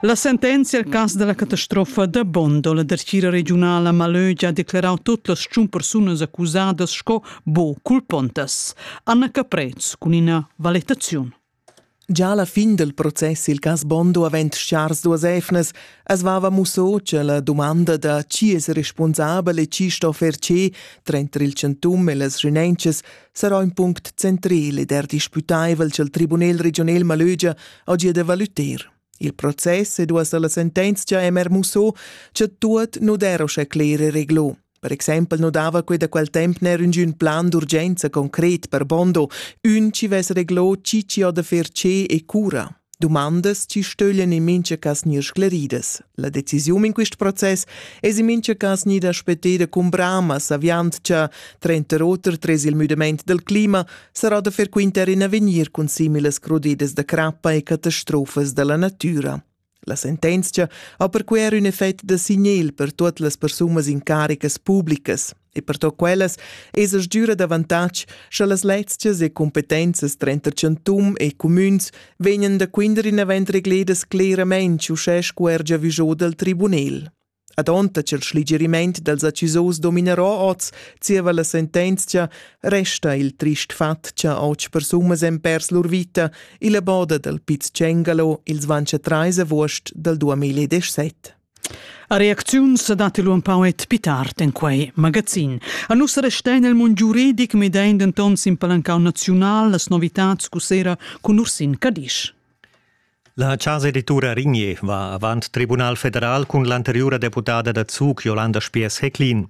La sentenzia al cas da la catastrofa da Bondo, la dertgira regiunala Malögia ha declerau tot las tschun persunas accusadas sco bo culpontas. Anna Caprez cun ina valetaziun. Già alla fin del process il cas Bondo avent schars duas efnas, as vava musso che la domanda da chi es responsabel e chi sto fer che tranter il centum e las renences sarà un punct central ed er disputaivel ch'el tribunel regional Malögia ha gia da valuter. Il process e duas la sentenzia è mer musso, che tuot nu dero sche clere reglo. Per exempel nu dava quei da quel temp ner üngün plan d'urgenza concret per Bondo, ün ci ves reglo cici o da fer ce e cura. Domandas ci stöglien in mincha cas gnir scleridas. La decisiun in quist process es in mincha cas gnida speteda cun brama, saviand cha, trenter oter, tres il müdament del clima, sarà da frequentar in avegnir cun similas crudidas da crappa e catastrofas da la natüra. La sentenzia ha perquei er ün effect da signel per tuot las persunas incaricas publicas e per to quellas esa sgüra d'avantatg scha las lezias e competenzas trenta chantum e cumüns vegnan da quinder inavant regledas cleramaing uschè scu er giavüschò dal tribunel. Adonta ch'el schligerimaint dals accusaus dominerò oz zieva la sentenzia, resta il trist fat cha otg persunas èn pers lur vita illa boda dal Piz Cengalo il dvantsch trais avuost dal 2017. A reacziun sa dat lu empau et pi tard en quei magazin. A nus restein el mund giuridic medein denton sin palancau naziunal las novitats cu sera cun Ursin Cadisch. La chasa editura Rigner va avant Tribunal federal cun l'anteriura deputada da Zug Jolanda Spiess-Hecklin.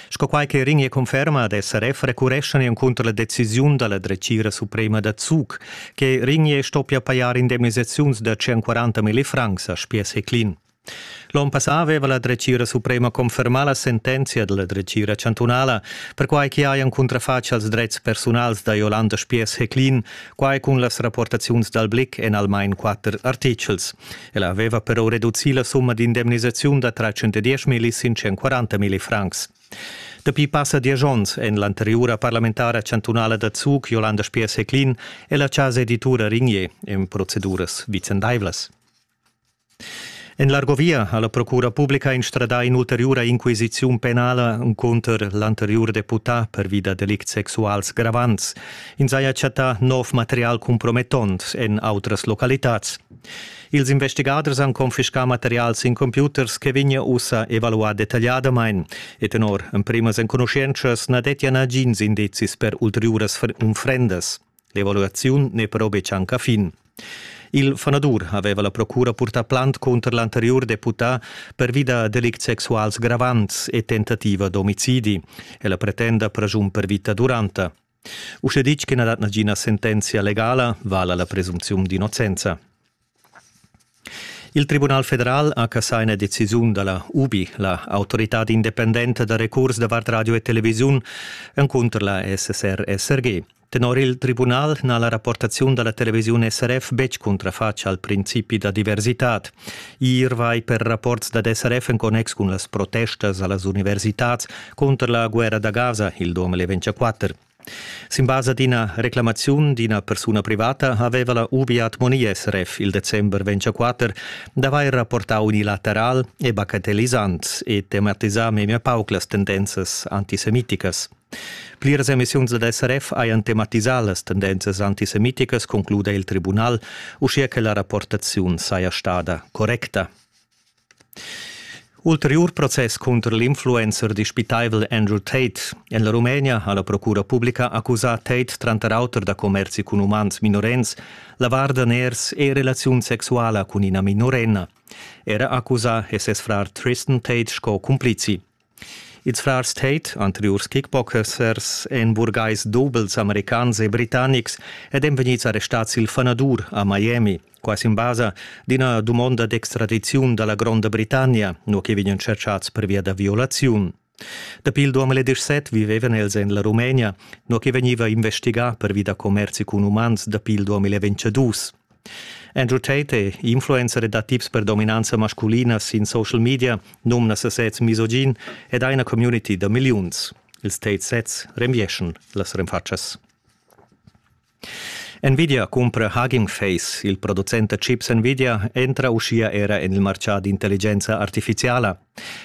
Sco quai che Rigner conferma ad SRF recureschan encunter la decisiun da la dretgira suprema da Zug, che Rigner stoppia pajar indemnisaziuns da 140 mila francs a Spiess-Hecklin. L'onn passà aveva la dretgira suprema confermà la sentenzia dalla dretgira chantunala, perquai che hajan cuntrafatg als dretgs persunals da Jolanda Spiess-Heclin, quai cun las rapportaziuns dal Blick en almain quatter artitgels. Ella aveva però reducì la summa d'indemnisaziun da 310 milli sin 140 milli francs. Dapi passa diesch onns en l'anteriura parlamentara chantunala da Zug Jolanda Spiess-Heclin è la chasa editura Rignier en proceduras vicendaivlas. En l'Argovia ha la procura publica instradà in'ulteriura inquisiziun penala cunter l'anteriur deputà pervi da delicts sexuals gravants. Ins haja chattà nov material compromettont en autras localitads. Ils investigaders han confiscà material sin computers che vegnia ussa evaluà detagliadamain e tenor emprimas enconuschientschas na dettia nagins indizis per ulteriuras unfrendas. L'evaluaziun n'è però betg anc a fin. Il fanadur aveva la procura purtà plant cunter l'anteriur deputà pervi da delicts sexuals gravants e tentativa d'omicidi. Ella pretenda praschun per vita duranta. Uschè ditg che na dat nagina sentenzia legala, vala la presumziun d'innocenza. Il Tribunal federal ha cassà ina decisiun da la UBI, la autoritad independenta da recurs davart radio e televisiun, encunter la SSR-SRG. Tenor il tribunal n'ha la rapportaziun da la televisiun SRF betg cuntrafatg al principi da diversitad. Ir vai per rapports dad SRF en connex cun las protestas a las universitads cunter la guerra da Gaza, il Dom e le 24. Sin basa d'ina reclamaziun d'ina persuna privata haveva la UBI Moni SRF il december 24 d'avair rapportau unilateral e bagatellisant e tematisà memia pauc las tendenzas antisemiticas. Pliras emissiuns dad SRF hajan tematisà las tendenzas antisemiticas, concluda il tribunal, uschia che la rapportaziun saja stada correcta. Ulteriur process cunter l'influencer dispitaivel Andrew Tate. En la Rumenia ha la procura publica accusà Tate tranter auter da commerzi cun umans minorens, lavar daners e relaziun sexuala cun ina minorenna. Era accusà è ses frar Tristan Tate sco cumplizi. Ils frars Tate, anteriurs kickboxers, èn burgais dobels americans e britannics ed èn vegnids arrestads il fanadur a Miami. Quai sin basa d'ina dumonda d'extradiziun da la Gronda Britannia, nua che vegnan tschertgads pervia da violaziun. Dapi il 2017 vivevan els en la Rumenia, nua che vegniva investigà pervi da commerzi cun umans dapi il 2022. Andrew Tate è influencer da tips per dominanza masculina sin social media, numna sesez misogin ed ha ina community da milliuns. Ils Tate sets renvieschan las renfatschas. Nvidia cumpra Hugging Face. Il producent da chips Nvidia entra uschia era en il martgà d'intelligenza artifiziala.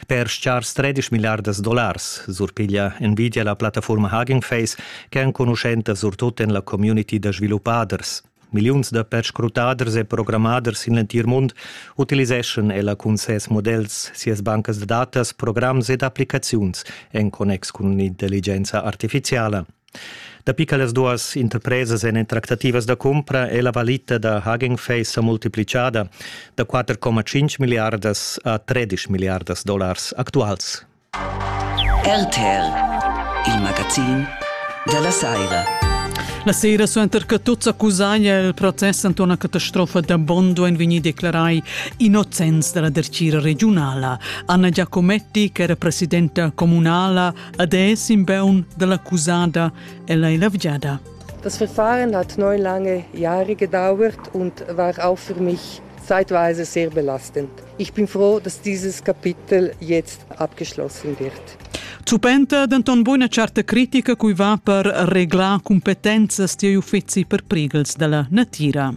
Per schars 13 milliardas dollars surpiglia Nvidia la plattafurma Hugging Face, ch'è enconuschenta surtut en la community da sviluppaders. Milliuns da perscrutaders e programmaders sin l'entir mund utiliseschan ella cun ses models, sias bancas da datas, programs ed applicaziuns en connex cun l'intelligenza artifiziala. Dapi che las duas interpresas èn en tractativas da cumpra è la valita da Hagen Face sa multiplicada da 4,5 miliardas a 13 miliardas dollars actuals. RTL, il magazin dalla saira. La sera suenter che tuts accusaglia il process anta una catastrofa da Bondo en vegni declarai innocents dalla dercira regionala. Anna Giacometti, che era presidenta comunala, ad è in beun dell'accusada ella è lavgiada. Das Verfahren hat neun lange Jahre gedauert und war auch für mich Zeitweise sehr belastend. Ich bin froh, dass dieses Kapitel jetzt abgeschlossen wird. Zupenta denton buona certa critica cui va per reglar cumpetenzas tier uffizi per prigels dalla natira.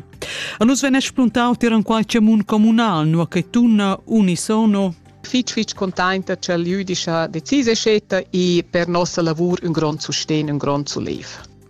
A nus vene spuntau tier an qualche mun comunal, nu che tunna unisono fitg fitg contenta che l'Jüdische Decise scetta e per nossa lavur un grond sustegn, un grond sulev.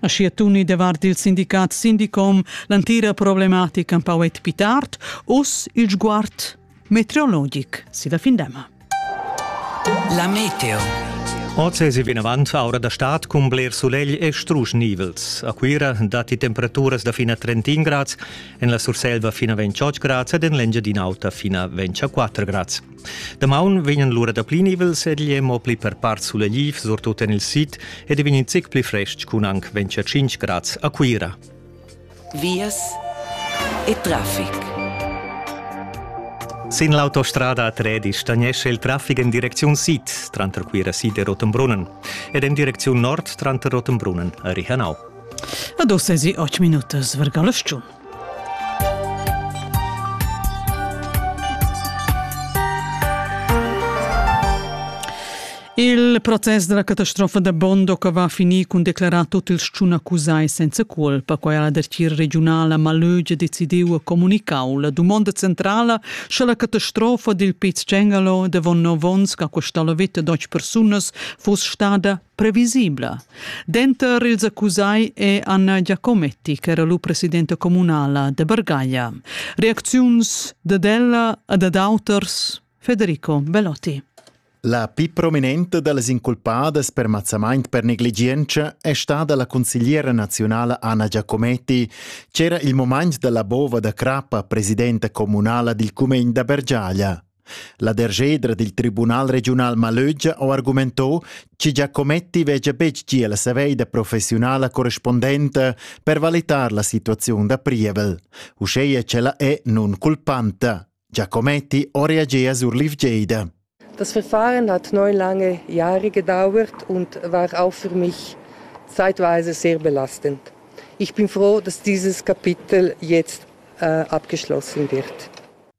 Aschia tuni davart il sindicat Sindicom l'antira problematica empau et pli tard, uss il sguard meteorologic silla findema. La meteo. Oz è vinavant aura da stad cun bler sulegl e strusch nivels. A Cuira datti temperaturas da fina 31 grads, en la Surselva fina 28 grads ed en l'Engiadin'Alta fina 24 grads. Damaun vegnan lura dapli nivels ed igl è mo pli per part sulegl, surtut en il sid, ed vegn in zic pli frestg cun anc 25 grads a Cuira. Vias e traffic. Sin l'autostrada a Tredi stagnesce il traffic en direcziun sid tranter Cuira sid e Rotenbrunnen ed en direcziun nord tranter Rotenbrunnen a Rihanau. Ad ossa si 8 minutas verga la stiun. Il protest dalla catastrofa da Bondoca va a finir cun declarar tot ils tschun accusai senza cuolpa. Quai ha la dertgira regiunala Malögia decidiu e comunicau. La dumonda centrala sche la catastrofa dil Piz Cengalo davon nov onns che ha costau la veta a deutsch persunas fuss stada previsibla. Denter ils accusai è Anna Giacometti, ch'era lu presidenta communala de Bargaglia. Reacziuns dad ella e dad auters Federico Belotti. La più prominente delle inculpate per mazzamento per negligenza è stata la consigliera nazionale Anna Giacometti, c'era il momento della bova da crappa presidente comunale del Comune da Bergiaglia. La derschedra dil Tribunal regiunal Malögia ha argumentau che Giacometti vegia betg gia la saveida professiunala correspondenta per valitar la situaziun da prievel, uscheia ch'ella è nunculpanta. Giacometti ha reagea sur l'ivgeida. Das Verfahren hat neun lange Jahre gedauert und war auch für mich zeitweise sehr belastend. Ich bin froh, dass dieses Kapitel jetzt äh, abgeschlossen wird.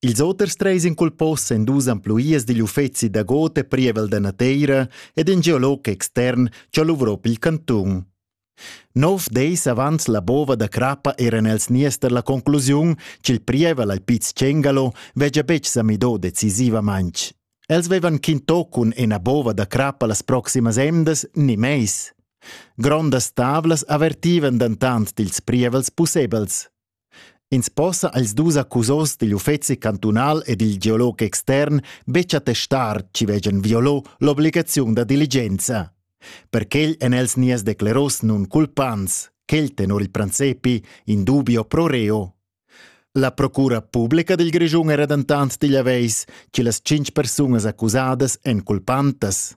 Ils oters treis inculpos s'endusan pluias digl uffeci da god e prievel da nateira ed in geolog extern che luvro pil cantun. Nov deis avans la bova da crappa eran els nies per la conclusiun ch'il prievel al Piz Cengalo vegia betg sa midò decisivamaintg. Els vevan quintò cun ena bova da crappa las proximas emdas ni meis. Grondas tavlas avertivan dentant dils prievels pussebels. Ins possa als dus accusos digl uffeci cantunal e dil geolog extern betg attestar chi vegian violò l'obligaziun da diligenza. Per quel èn els nies decleros nun culpants, quel tenor il prancepi in dubio pro reo. La procura publica dil Grischun era dentant digl aveis, che las cinc persunas accusadas èn culpantas.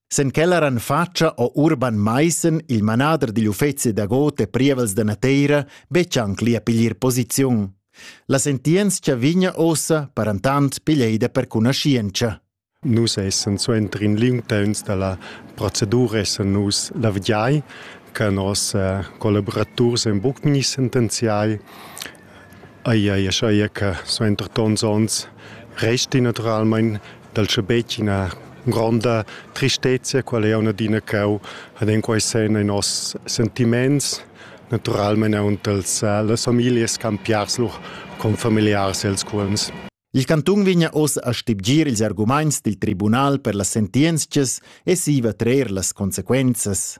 Sen quel eran fatscha o Urban Maissen, il manader digl uffeci da got e prievels da nateira, betg anc li a piglier posiziun. La sentientscha vigna ossa, parantant, piglieida per cunaschientscha. Nus essen suenter in liung temps dalla procedura essen nus la vdiai che nos eh, collaboraturs en buc ni sentenziai Ai ai schaia che suenter tons ons resti naturalmain dal schabetg ina gronda tristezia quella jau adina ch'eu had en quai sen in noss sentiments, naturalmain aunc dals las familias campiars lur confamiliars els cuolms. Il cantun vegna oz a stibgir ils argumaints dil tribunal per las sentientschas e siva trer las consequenzas.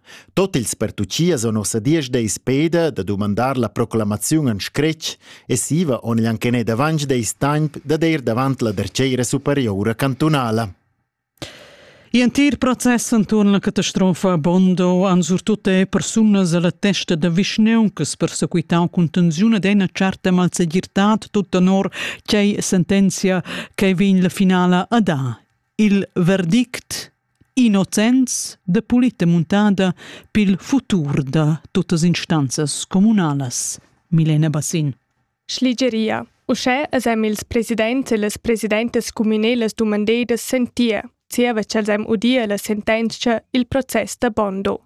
Tot ils pertuchias on nossa diesch peda da dumandar la proclamaziun en scretg e siva on igl anchenet avantg deis temp dad eir davant la derceira superiora cantunala. In entir process enturn la catastrofa a Bondo han surtut er persunas alla testa da vischneun che persequitau cun tensiun ed ena certa malsegirtad tut tenor tgei sentenzia che vegn la finala a dar. il verdict innocents de pulita muntada pil futur da tuttas instanzas communalas. Milena Bassin. Schligeria. Uschè es em ils presidents e las presidentas communelas dumandedas sentir, zieva ch'els em udir la sentenzia il process da Bondo.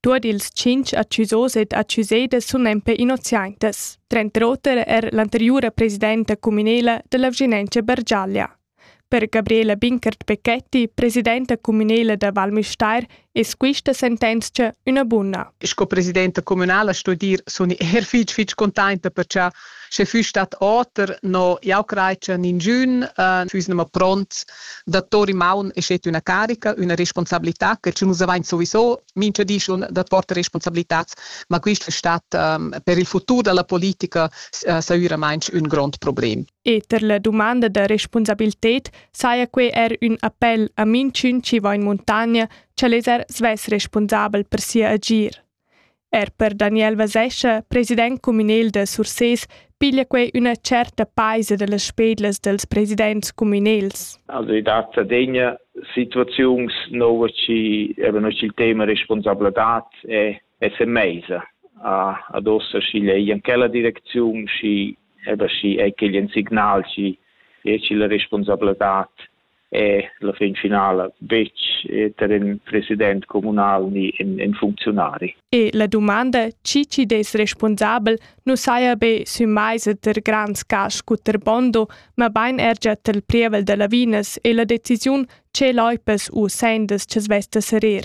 Tuot ils tschinch accusos ed accusedas sun empe innoziantas, tranter oter er l'anteriura presidenta communela della Vginencia Bergiaglia. Per Gabriela Binkert-Becchetti, presidenta cumünela da Val Müstair, es quista sentenzcha üna buna. Sco presidenta cumünala sto dir, sun eir fich fich containta per cha sche füss stat oter, no jau crai cha ninchün füss nemma pront da tour in maun e schet üna carica, üna responsabilità che schi nus avain soviso mincha di schon da porter responsabilitats, ma quist es stat per il futur da la politica sairamaing ün grond problem. E ter la dumanda da respunsabilted saja quei er ün appel a minchün chi va in muntagna, ch'el es er svess respunsabel per sia agir. Er per Daniel Vasescha, president communal da Surses, piglia quei üna certa paisa da las spedlas dels presidents communals. Also i dat adegna situaziuns nova ci eben il tema responsabilità è è se mesa a ad ossa sci lei in quella direczione sci ed aschi ei quei in signal chi deci la responsabladad e la fin finala betg ter in president communal ni in, in funzionari. E la domanda chi chi des responsabel nu saja be sü mais e ter grands cash cuter bondo, ma bain er già tel prievel da lavinas e la decisiun ce loipas u sendas ce svesta serir.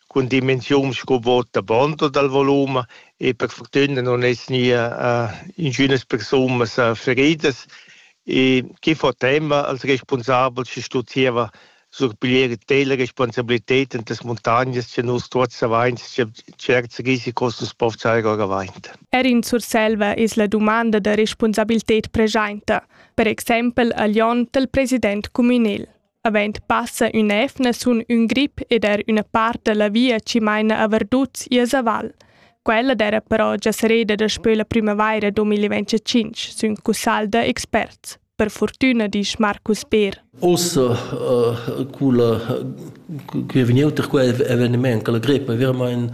cun dimensiuns sco vot da bond o dal volum e per fortüna non es nia ingünas persunas feridas e chi fo temma als respunsabels chi stu zieva surpiglier tela responsabilited in tas muntagnas cha nus tuots avains cha tscherts risicos nu's po fsar our avant. Er in Surselva es la dumanda da respunsabilted preschainta, per exaimpel a Lyon dal president cumünel. Avend passa ün'evna sun ün grip ed er üna part da la via chi maina a Verduts i a Zaval. Quella d'eira però già serreda daspö la prümavaira 2025, sün cussagl da experts. Per fortüna disch Marcus Beer. Ossa uh, culla, che è vegniuta quel eveniment, che la grippa è veramente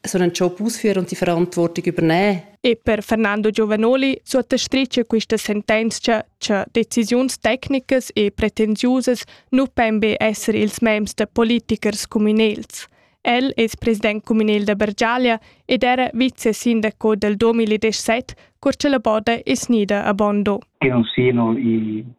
sono ciò pus für und die Verantwortung übernehmen. E per Fernando Giovanoli sottastritge questa sentenza che decisiuns tecnicas e pretensiusas nu pon be essere ils members de politikers communals. El es president communal da Bergiaglia ed era vicesindaco del 2017 cur che la boda è snida a Bondo. Che non siano i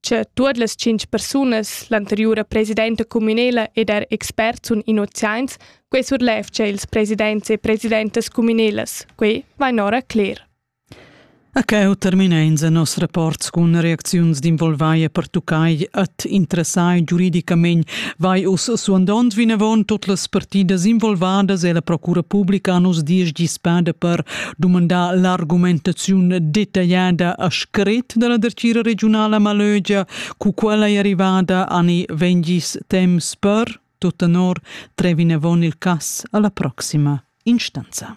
che tuot las tschinch persunas, l'anteriura presidenta cumünela ed er experts sun innoziaints, quai surlevgia ils presidents e presidentas cumünelas. Quai vain ora cler. A cheu terminein se nos reports cun reacziuns d'involvai e pertuccai at interessai giuridicamein vai us suandond vinavon tot las partidas involvadas e la procura publica nos dies gispada per dumandà l'argumentaziun detagliada a scret da la dertgira regiunala Malögia, cu quella è arrivada ani vengis temps per, tut tenor, trevin avon il cass alla proxima instanza.